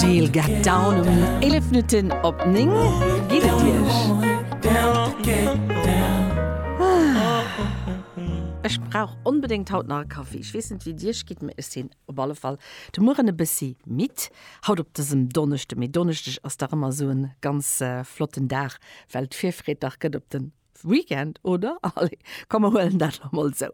Cocktail get down um 11 Minutten op 9. Wéi geet et Iech? Ech brauch onbedéngt haut nach e Kaffi. Ech weess net, wéi et Iech geet, mee ech sinn op alle Fall de Mueren e bëssi midd. Haut op dësem Donneschde, mee Donneschdeg ass dach ëmmer esou e ganz flotten Dag, well d'Virfreed dach gëtt op den. Weekend, oder? Allez, komm mer huelen dat elo mol esou.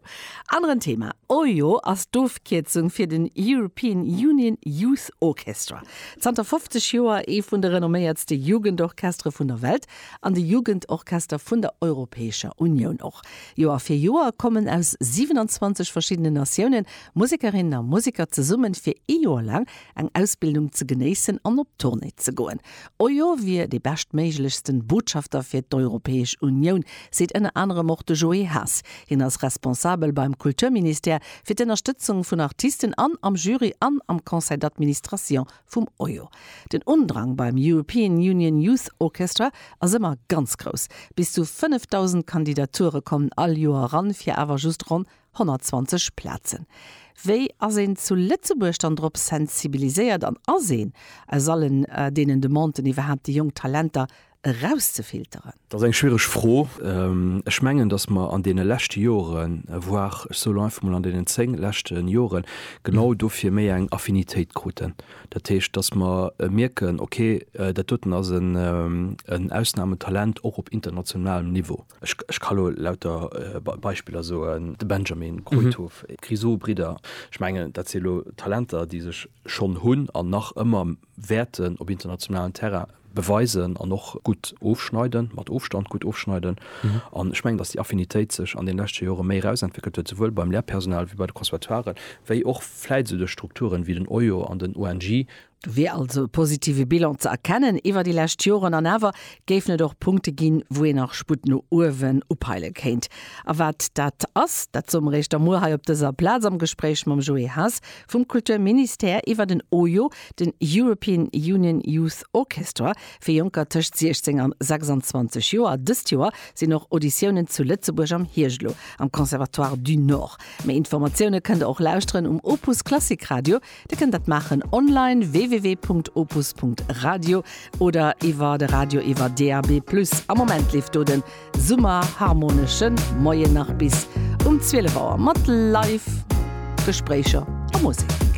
Aneren Thema, EUYO ass d'Ofkierzung fir den European Union Youth Orchestra. Zanter 50 Joer ee vun de renomméiertste Jugendorchestere vun der Welt an de Jugendorchester vun der Europäescher Unioun och. Joer fir Joer kommen aus 27 verschiddenen Natiounen Musekerinnen a Museker zesummen, fir ee Joer laang eng Ausbildung ze genéissen an op Tournée ze goen. Ojo wier dee beschtméiglechsten Botschafter fir d'Europäesch Unioun, seet ënner anerem och de Joé Haas. Hien ass Responsabel beim Kulturministère fir d'Ënnerstëtzung vun Artisten an am Jury an am Conseil d'Administration vum Ojo. Den Undrang beim European Union Youth Orchestra ass ëmmer ganz grouss. Bis zu 5.000 Kandidature kommen all Joer eran, fir awer just ronn 120 Plazen. Wéi ass een zu Lëtzebuerg dann drop sensibiliséiert an ass een aus allen deenen Demanden iwwerhaapt déi jonk Talenter erauszefilteren? Dat ass eng schwiereg Fro. Ech mengen, datt mer an deene leschte Joren, voire ech soe lo einfach mol an deenen 10 leschte Joren, genau dofir méi eng Affinitéit kruten. Dat heescht, datt mer mierken, okay, dat doten ass en Ausnametalent och op internationalem Niveau. Ech ka lo lauter Beispiller soen, de Benjamin, Kruithof, d'Grisou Bridder. Ech mengen, dat si lo Talenter, déi sech schonn hunn an nach ëmmer wäerten op internationalen Terrain beweisen an och gutt ofschneiden, mat Ofstand gutt ofschneiden. An ech mengen, datt déi Affinitéit sech an deene leschte Jore méi erausentwéckelt huet, souwuel beim Lehrpersonal wéi bei de Conservatoiren, wéi och vläit esou duerch Strukturen wéi den OIO an den ONJ, Do wier also e positive Bilan ze erkennen iwwer déi lescht Joren. An awer géifen et och Punkte ginn, wou een nach Sputt no uewen upeile kéint. A wat dat ass, dat soe mer Iech da muer hei op dëser Plaz am Gespréich mam Joé Haas vum Kulturministère iwwer den EUYO, den European Union Youth Orchestra fir Jonker tëscht 16 an 26 Joer. Dëst Joer sinn och Auditiounen zu Lëtzebuerg am Hierscht elo am Conservatoire du Nord. Méi Informatioune kënnt der och lauschteren um Opus Klassik Radio Dir kënnt dat maachen online, www.opus.radio, oder iwwer de Radio iwwer DAB+. Am Moment leeft do den Summer Harmonesche Moien nach bis um 12 Auer mat Live Gespréicher a Musek.